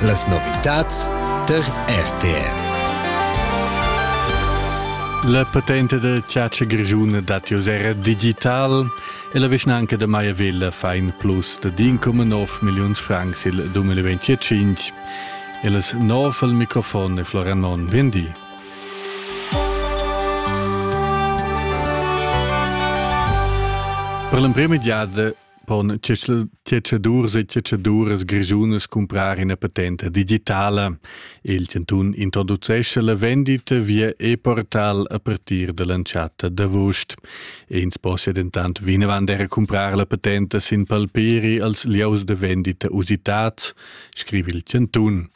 Las novitads tar RTR. La patente da chatscha grischuna dat jos era digital e la vischnanca da Maiavilla fa in plus da 1,9 milliuns francs il 2025. E las nov al microfon è Florian Non. Vendi. Per l'emprima giada pon tschetschadurs e tschetschaduras grischunas cumprar ina patenta digitala. Il chantun introducescha la vendita via e-portal a partir dall'entschatta d'avust. Ins possia dentant vinavant era cumprar la patenta sin palpiri als lieus da vendita usitads, scrivi il chantun.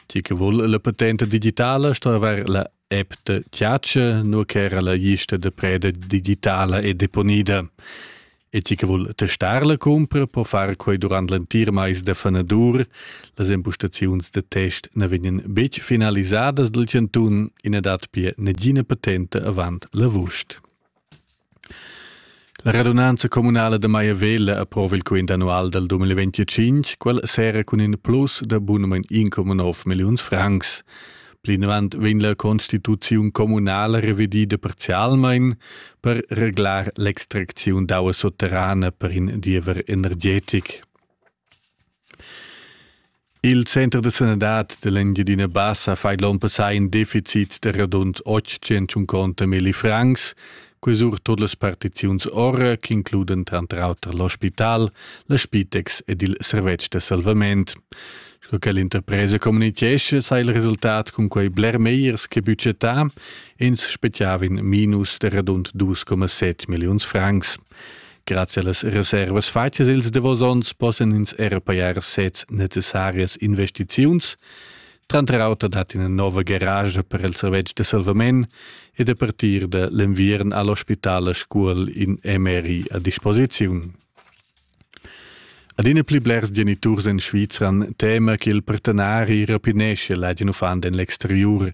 Chi che vul la patenta digitala sto avair la App da Tiace, nur ch'era la lista da preda digitala è deponida. E chi che vul testar la cumpra po far quei durant l'entir mais da fanadur. Las impostaziuns da test na vegnan betg finalisadas dal chantun, ina dat pia negina patente avant l'avust. La radunanza communala da Maiavella approva il quint annual dal 2025, quel sera cun in plus da bunamain 1,9 milliuns francs. Plinavant vegn la constituziun communala revedida parzialmain per reglar l'extracziun d'aua sotterrana per in diever energetic. Il center da sanadad dell'Engiadina Bassa fa l'onn passà in deficit da radund 850 milli francs, quei sur tot las partiziuns ora che includen tranter auter l'ospital, la Spitex ed il servetsch da salvament. Sco che l'interpresa communichesce, sai il resultat cun quei bler megliers che budgetà, ins spechiavin minus de radund 2,7 milliuns francs. Grazie las reservas fatgas ils davos onns possan ins era pajar sez necessarias investiziuns. Tranter auter dat ina nova garage per il servetsch de salvament ed a partir de l'enviern all'ospitale Scuol in MRI a disposiziun. Adina pli blers geniturs en Svizra tema che il partenari rapinesce ladin uffant en l'exterior,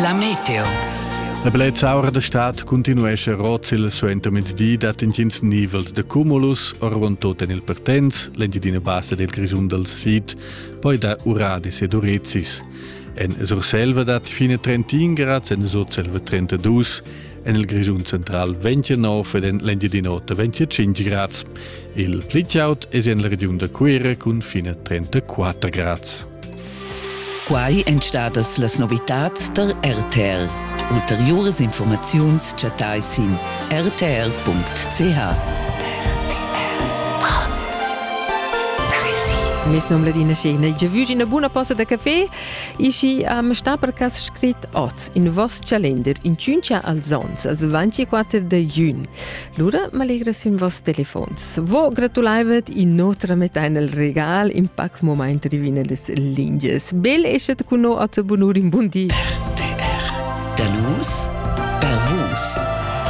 La meteo. La bellezza aura da stad continuescha rozzil suentermezdi dat intgins nivels da cumulus, orvon tot en il Pertens, l'Engiadina Bassa del Grischun dal Sid, poi da Uradis ed Urezis. En Surselva dat fine 31 grad, en Sutselva 32, en il Grischun central 29 ed en l'Engiadin'Ota 25 grad. Il pli chaud è en la regiun da Cuira cun fine 34 grad. Quai èn stadas las novitads tar RTL. Ulteriuras informaziuns chattai sin rtl.ch. Mes nom Ladina Schena. Je vu una buona posta da café e și am sta per cas scrit oz in vos calender in ciuncia als ons, als 24 de jun. Lura m'allegra sün vos telefons. Vo gratulaivet in notre metà nel regal in pac moment rivine des linges. Bel eschet cun no a te bonur in bun di. RTR. Da nus per vus.